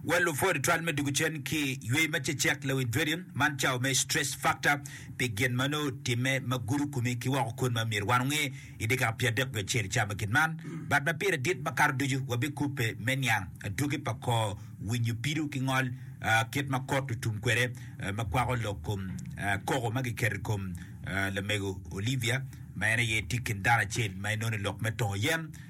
Wel lupwod itwal me dwogo cen ki ywec ma cecek lawi dreading man cawa me stress factor pi gin ma nongo otimme ma gudo komi ki woko kun ma myero wan onge i dyekaka pye adek nyo acel camo gin man bat ma pire dit ma kato ducu wabikubbe me niang adwogi pa kor winyo pido ki ngol ah, kit ma kot otum kwede ah, ma kwako lok kom ah, koko ma giketo i kom ah, lamego Olivia ma en aye tye i kin dano acel ma inono i lok me tongo yen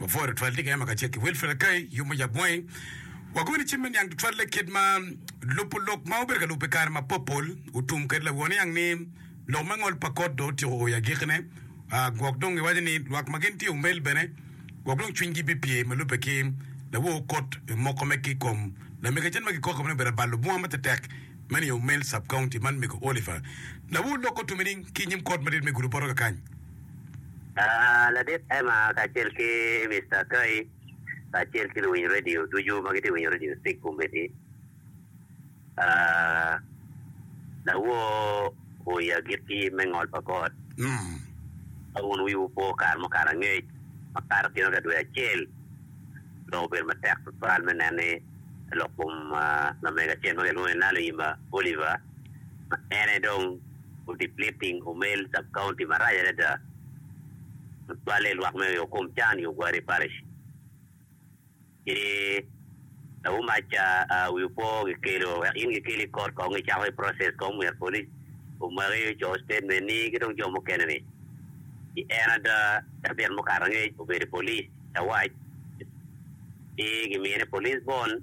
Wapworo tutwal tika en ma kacel ki Wilfred Akai, Yub Mujab Mwai. Wakobo ni cim me niang tutwalle kit ma lubo lok ma wabedo ka lubo pi kare mapopol otum kwede lawo niang ni lok me ngol pa kot dong otyeko o i agikine, ah, gwok dong iwaco ni lwak ma gin tye omel bene gwok dong cwinygi bipye ma lubbe ki lawo kot moko me ki kom lamege acel ma kikoko ni obedo abalo bunga matetek me niye omel sub-county man mego Oliver. Lawo lok otume ni ki inyim kot madit me Gulu Boroga kany, Ladit Emma kacel ki Mister Toy kacel ki luwiny radio ducu ma gitye ka winyo radio Speak Kombeddi, lawor oya agit ki yim me ngol pa God. Ka wun wiwu po kare mukalo angec makato kino ka dwe acel, dong obedo matek tutwal me neno ni lok kom lamego acel ma kilwongo ni Naluyima Oliver, ma en aye dong odepleting Omel Sub-County marac adada ma cwalle i lwak me oyo kom can i Ogwari Parish. Ci lawomac wi opo gikelo wek in gikeli i kot kong gicako i process kong myero police omaki oco statement ni ki dong jo mukene ni. Ci en ada cabit mukato angec obedo i police lawac ci gimine police bond.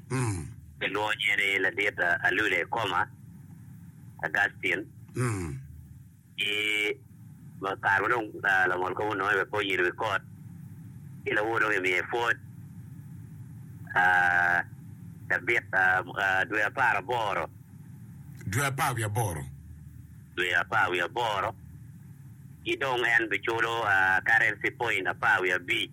Gilwongo nyinge ni Ladit Alule Koma, Augustine, ki ma kare ma dong Langol Koma ononge bene pe onyido wi kot, ci lawo dong ki miye pwod cabit dwe apar aboro, Dwe apar wiye aboro. dwe apar wiye aboro, ki dong en biculo currency point apar wiye abic.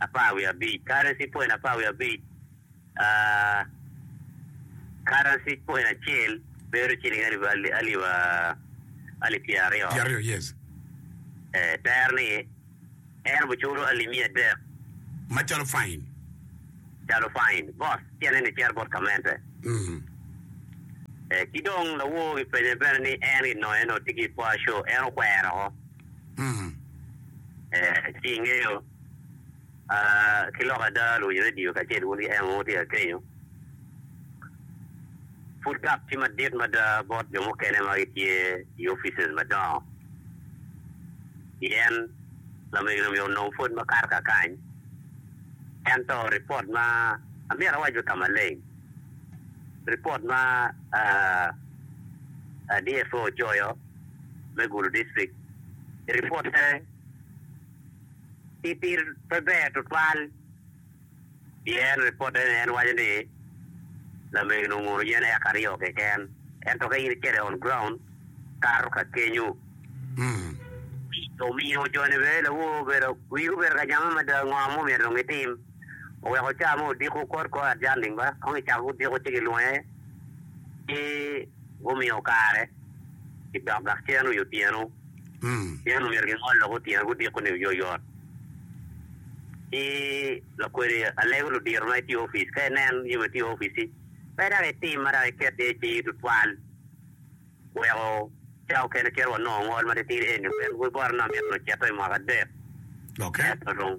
apar wiye abic, karency point apar wiye abic, karency point acel bedo ciling alip pyera aryo, tero ni en obiculo alip miya adek macalo fain. Calo fain bot tyene ni cito bot kamente. Ki dong lawor gipenye bene ni en ginonge ni tye ki i Pua Show, en okwero woko. Ci ingeyo ki lok ada luwinyo radio kacel wun ki en mogo tye ka kenyo. Pud gap tye madit mada bot jo mukene ma gitye i offices madongo. Pien lamego-ni omyero onong pwod makato kakany. Ento ripot ma, amyero awac bene ka maleng, ripot ma DFO ocoyo, me gulu distrik i ripot pe ki pir pe ber tutwal pien ripote ni en waco ni lamego ni onguno yen eka aryo keken ento ka in icito i on ground kato ka kenyu omiyo jo ni bene lawo obedo wigi obedo ka jame mada ngo ma omyero dong gitim oweko ca mo odiko kod kor adjusting ba kong icako ki odiko ci gilunge ki gumiyo kare i dok gacen i otyeno pien omyero gingol lok otyeno gudiko-ni oyoyot. Ci lakwedi alego ludito ma etye i opic ka enen yo ma etye i opic-ci, pe dok etim ma dok eket iye cing tutwal weko cawa okene kit wanongo ngol matitir eni. Obedo bot anongo myero onongo cito i mwaka adek ento dong.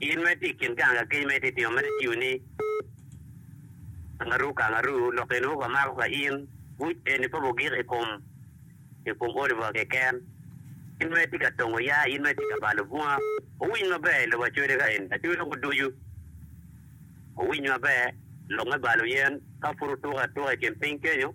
In ma itye i kin ganga keny ma itye tito ma itiyo ni kangaru kangaru, lok eni mogo amako ka in, buc eni pe obogik i kom i kom Oliver keken. In ma itye ka tongo ya, in ma itye ka balo bunga, wuwiny maber i lobo acode ka eni, acode mogo ducu. Wuwiny maber, lok me balo yen ka pud wutuko atuka i kin piny kenyo.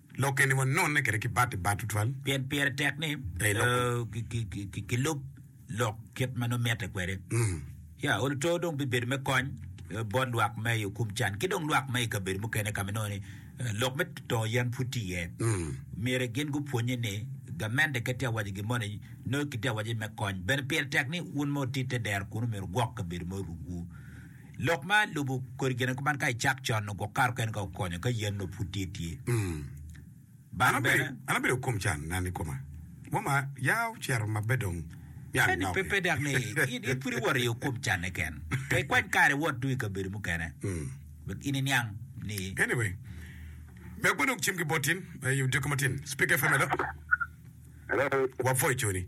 Lokke ni wanonne kwede ki bat i bat tutwal. Pien pire tek ni kilub lok kit ma nongo mitte kwede. Ya, odi to dong bibedo me kony bot lwak ma i okum can ki dong lwak ma i kabedo mukene ka ma nongo ni lok me tongo yen pud tye iye. Myero gin gupwonnye ni gamente ke tye ka waco gin mo ni nongo kitye ka waco me kony. Bene pire tek ni wun ma wuti te dero kunu myero wugwok kabedo ma orukwu. Lok ma lubo kodi gin kuman ka icak con nongo gwok kare okene ka okonyo ka yen nongo pud tye tye. Bang bene. An abedo kom can na ni koma. Moma ya ocito ma pe dong myero Eni pe inoki. pe dok ni in in pud iwoto iyo kom canne ken. Pe ikwany kare iwot tung i kabedo mukene. Wek in iniang ni Anyway, me agwe dong cim ki bot in, eh, odiko matin. Speak FM hello. Hello. Wapwoyo coni.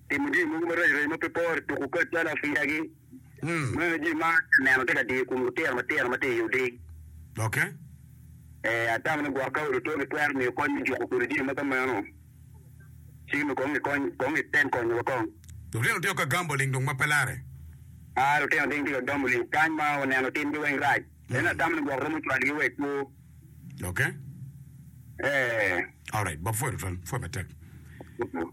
timo jami mogo marac rac ma pe pore tuku kacce lafiyagi ma jami ma aneno tye ka diyo i kom lutino matino ma tye i odi. Ok. Ee, atamo ni gwok ka odi otwo gitwero miyo kony me juko kwede jami ma ka meno. Ci nongo kong gikony, kong giten konyo wa kong. Lutino tye ka gamo ling dong ma pe larre. Aa, lutino dong tye ka gamo ling kany ma waneno timgi weng rac. Ento atamo ni gwok romo cwalogi wa i kwo. Ok. Ee. Alright, Bob pwoyo tutwal, pwoyo matek.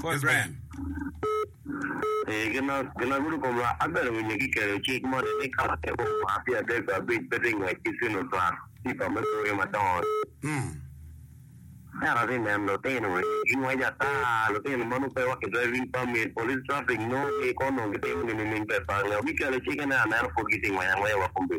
Kor Brian. Ee, gin ma ginagudo komwa. Abene winyo kiketo cik moni ni ka latin mo omar pi adek or abic pe tye ngwec ki cino twak pipa me bwoyo madongo, ento atye neno lutino eni gingwec ata. Lutino meno pe wa ki driving permit, police traffic nongo pe kong onongo gitimo gin nining pe pa nge. Giketo cik ene aneno pud gitye ngwec angwec wa kombi.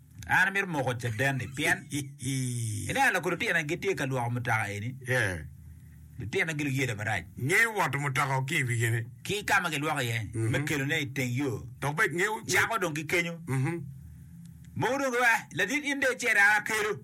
An amito moko caden-ni pien iniang lok lutina gitye ka lwoko mutoka eni. Lutina giluw yela marac. Ngeyo woto mutoka o ki i wigine. Ki ka ma gilwoko iye me kelone i teng yo. Dok bed ngeyo. Cako dong ki kenyo. Mogo dong giwaci, Ladit in dong icer a kelu.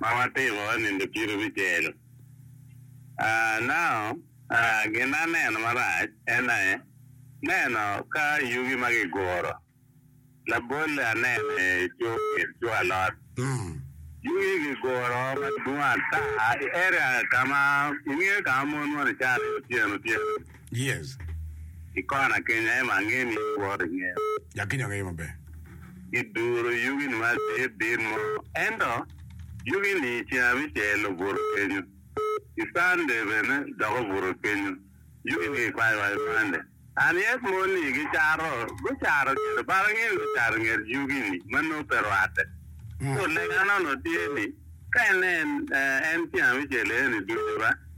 ma watiko i nindo ciro bicel. Nao gin ma aneno marac en aye neno ka yugi ma kiguro labolle anene co kit co alot. Yugi kiguro madwong ata i area ka ma ingeyo ka ma mon moni cato iye otyeno otyeno. Yes. I kona kenya ema angeyo ni iworo ingeyo. Ya kenya angeyo maber. Giduro yugi ni ma dit dit mo ento yugi ni i ceng abicel obuto kenyo i Sunday bene dok obuto kenyo yugi ni gikwayo wa i Monday and yet mon ni gicato gucato kede but angeyo ni gucato inget yugi ni ma nongo pe rwate so lega nono tye ni ka inen en ceng abicel eni ducu ba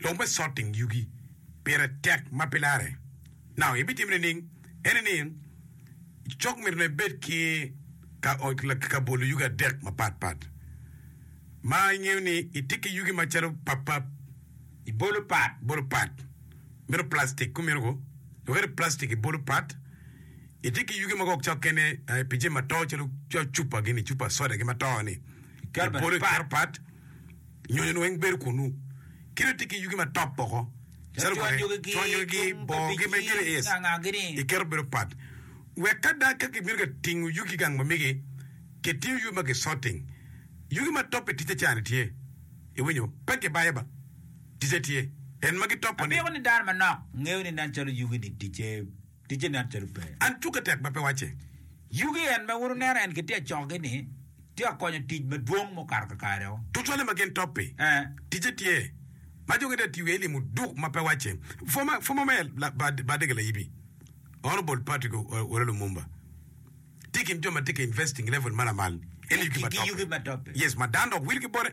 Lok me Sorting Yugi Pire Tek ma pe Larre Naka ibitimo nining? Ene ni, cok myero ne bed ki ka bolo yugi adek mapat pat ma ingeyo ni itye ki yugi macalo papap, ibolo pat bolo pat myero plastic kumeno ko dok ene plastic ibolo pat itye ki yugi mogo cok kene pi jami ma to calo cupa gini cupa soda gi ma to ni ibolo iketo pat. Nyonyo-nu weng bedo kunnu, kit ma itye ki yugi ma top woko calo kwede, cwanyogi ki bogi me giriis iketo bedo pat, wek ka dang ka kibino ka tingo yugi ki gang ma migi, kitingo yugi ma gicoting. Yugi ma top i ticce cani tye. Iwinyo? Pe gibayo ba. Ticce tye. En ma gitopo-ni. Apiko ni dano manok ngeyo ni nen calo yugi-ni ticce. Ticce nen calo pe en cukke tek ma pe wacce. Yugi en ma wun wuneno en gitye acogi ni tye ka konyo tic madwong mukato kakare o. Tucwale ma gin topi, Eh. Ticce tye ma jo gitye ka tiyo iye i limo duk ma pe wacce. Former former mayor la ba ba Dege Layibi, Honourable Patrick O Owelo Lumumba, tye i kin jo ma tye ka investing level ma lamal en i yugi ma topi. Yugi ma topi. Yes ma dano dok wil ki bote.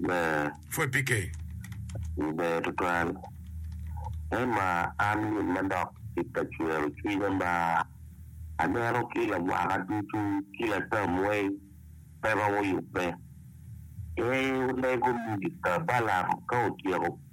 Ber. Pwod pi ke. I ber tutwal. Emma, An gin ma dok tic ka cwero cwinya ma aneno ki lawaka ducu ki latam weng pe romo yubbe. Ee, olego mister Balaam ka otyeko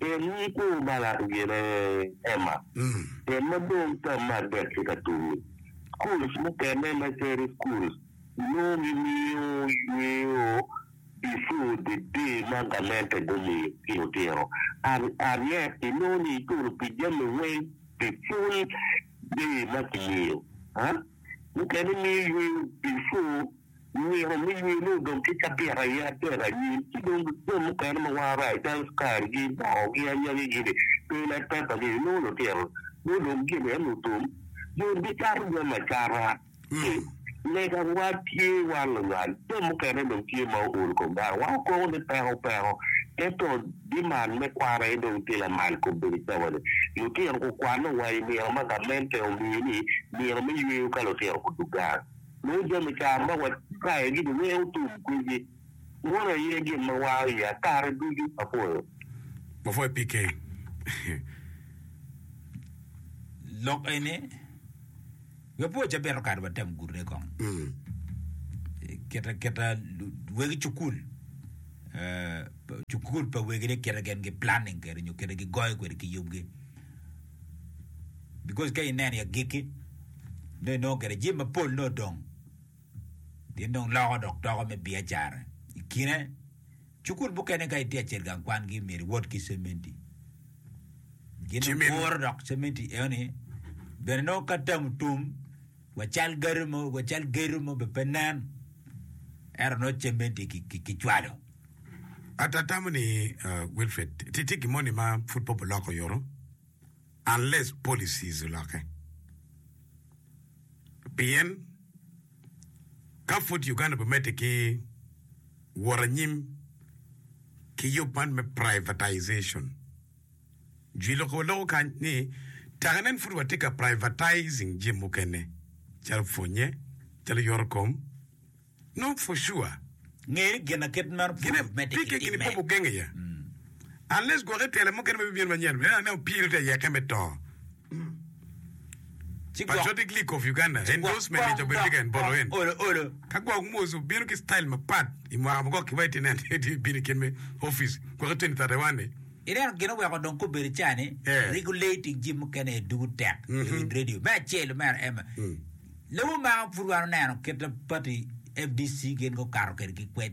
Tim ni kor Balak gire Emma, tim ma dong tam me adek tye ka tumi. Schools mukene me Cherry Schools nongo gimiyo yweyo before the day ma gamente gumiyo tino tino and and yet inongo ni iculo pi jami weng the full day ma kimiyo huh? Mukene miyo yweyo before Myero me yeni odong ki cabit aye adek anyim, ci dong jo mukene ma waa rac dang karigi, bongogi, anyangigi-ni pe ilet peppa ni inongo lutito mo dong gin aye lutum jo gicato jami acata ci lega wa tye wan luwal jo mukene dong tye ma ool kom dano wa okobo ni peko peko ento diman me kwan aye dong tye lamal kom bedo cawani lutito gukwano wa imyero ma gamente omiyo ni myero me yweyo ka lutito gudugang. Lubo jo me car ma watayogi ni wek otum kwedgi munu aye gin ma wango iya kare ducu. Apwoyo. Wapwoyo PK. Lok eni we pwo cabito kare watem gurre kong. Keta keta wegi cukul cukul pa wegi ni keta gen gi planning kede nyo keta gi goyo kwede ki yubgi. because ka ineno i agikki nongo inongo gire jami mapol nongo odong pien dong loko dok doko me biacara i kine cukul mukene ka itye acel gang kwangi myero iwot ki cementi gin Cement. kuro dok cementi eoni bene nongo ka tamu tum Wa cal gedo mo, wa cal gedo mo be pe nen, ento nongo cemme tye ki cwalo. Atamo ni Wilfred tye tye gin moni ma pud pe obiloko yoto unless policies oloke. Pien ka pud Uganda obi medde ki wot anyim ki yub man me privatization, Jwi loko wa loko kany ni taka nen pud watye ka privatizing jami mukene calo pwonye, calo yoto kom. No for sure. Nge ni gin akit meno pud Gine medde ki pike gini timme. pogo genge ya. Unless gwoke tela mukene ma bibino manyen, en aneno pire te yeke me to. Ci gwok ireno gin oweko dong kobedo ca ni rik olei tic jip mukene aye dugu tek i wi radio. Me acel mere en lobo maro pud wan oneno kit ma pati FDC gin gukato kwede ki kwed.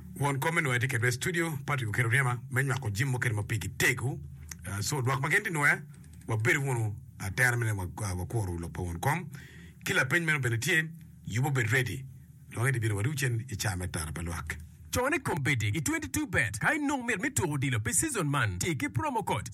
Won kom me nwoya tye kedwa i studio, Patrick oketo ryema me nywako jim mukene ma pigi tego. Co lwak ma gin tye nwoya, wabedo wunu atera me neno wa wakuro lok pa won kom. Ki lapeny meno bene tye, yubo bed ready dong edi bino wadiwu cen i caa me tara pa lwak. Cone kombeddi i twenty two bet ka inong mit me tuko odilo pi season man, ti ki promo code.